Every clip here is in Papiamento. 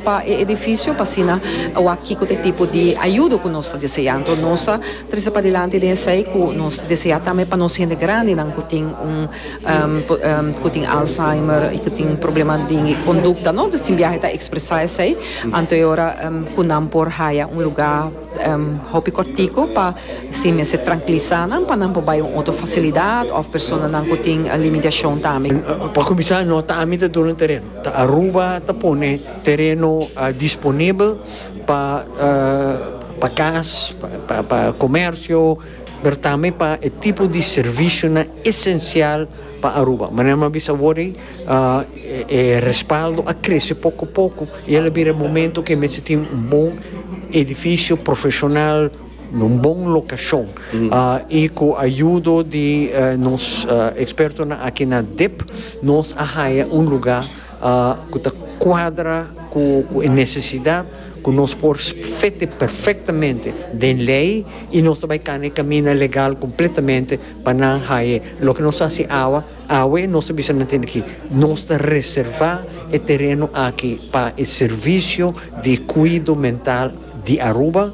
pa e edificio pa asina a wak kico ta e tipo di ayudo cu nos ta desea. Enton nos ta trece padilanti den esey cu nos desea tambe pa nos hende grandinan cu tin un cu tin Alzheimer y cu tin problema di conducta no tin biaha ta expresa esey anto e ora cu nan por haya un lugar hopi cortico pa sin mester trankilisa nan pa nan por bay un otro facilidad of personanan cu tin limitacion tambe. Pa cuminsa no ta ami ta duna tereno. Aruba ta pone tereno disponibel pa pa kas, pa komersio, pero tambe pa e tipo di servisionan esensial pa Aruba. Manera mi a bisa awor ei e respaldo a krese poko poko y el a bira e momento ku e mester tin un bon edifisio profeshonal. na un bon lokashon i ku ayudo di nos ekspertonan aki na dip nos a haña un lugá ku ta kuadra ku e nesesidat ku nos por fete perfektamente den lei i nos ta bai kana e kaminda legal kompletamente pa nan haña loke nos ta hasi awa. Awe nos ta bisa manten aki, nos ta reservá e tereno aki pa e servisio di kuido mental di Aruba.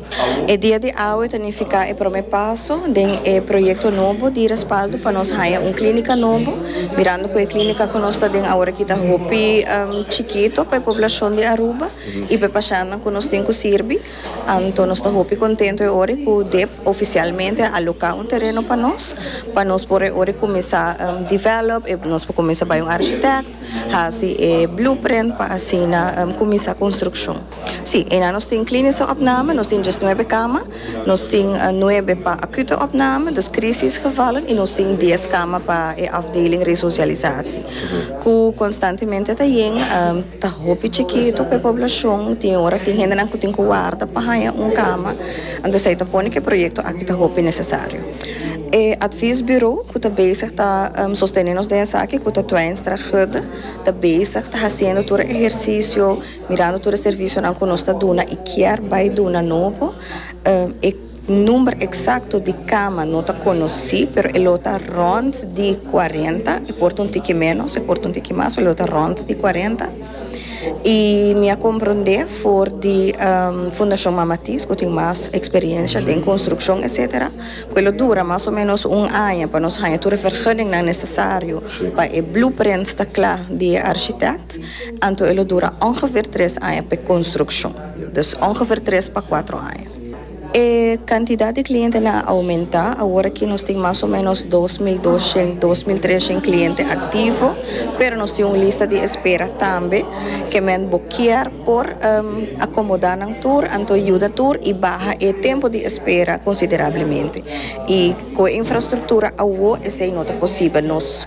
E dia di awe ta nifiká e promé paso den e proyekto nobo di respaldo pa nos haña un klínika nobo, mirando ku e klínika ku nos ta den aworakí ta hopi chikito pa e poblashon di Aruba i pa e pashannan ku nos tin ku sirbi. Anto nos ta hopi kontentu e ora ku dep ofisialmente a aloká un tereno pa nos, pa nos por e ora kuminsá develop, nos por kuminsá bai un architect hasi e blueprint pa asina kuminsá konstrukshon. Sí, e nan nos tin kliniso opname, nos tin djes nuebe kama, nos tin nuebe pa akute opname, dus krisisgevallen i nos tin dies kama pa e afdeling resosialisasi ku konstantemente ta yenga. Ta hopi chikitu pa e poblashon, tin ora tin hendenan ku tin ku warda pa haña un kama, anto esei ta pone ku e proyekto aki ta hopi nesesario. E atvies buro ku ta bezig ta sostene nos den esaki ku ta Twijnstra Gudde, ta bezig ta hasiendo tur e ehersisio, mirando tur e servisionan ku nos ta duna i kier bai duna nobo, e. Number eksakto di kama no ta konosí, pero e lo ta rònt di kuarenta, e por ta un tiki ménos, e por ta un tiki mas, pero e lo ta rònt di kuarenta. I mi a komprondé for di Fundashon Mama Tis ku tin mas eksperiensia den konstrukshon etsetera, ku e lo dura mas o ménos un aña pa nos haña tur e vergunningnan nesesario pa e blueprint ta kla di e arshitèkt, anto e lo dura ongefeer tres aña pa e konstrukshon. Dus ongefeer tres pa kuatro aña. E kantidat di klientenan a oumentá. Awor aki nos tin mas o ménos dos mil doshent, dos mil treshent kliente aktivo, pero nos tin un lista di espera tambe ke men bo kier por akomodá nan tur, anto yuda tur i baha e tempu di espera konsiderablemente. I ku e infrastruktura awo esei no ta posibel. Nos.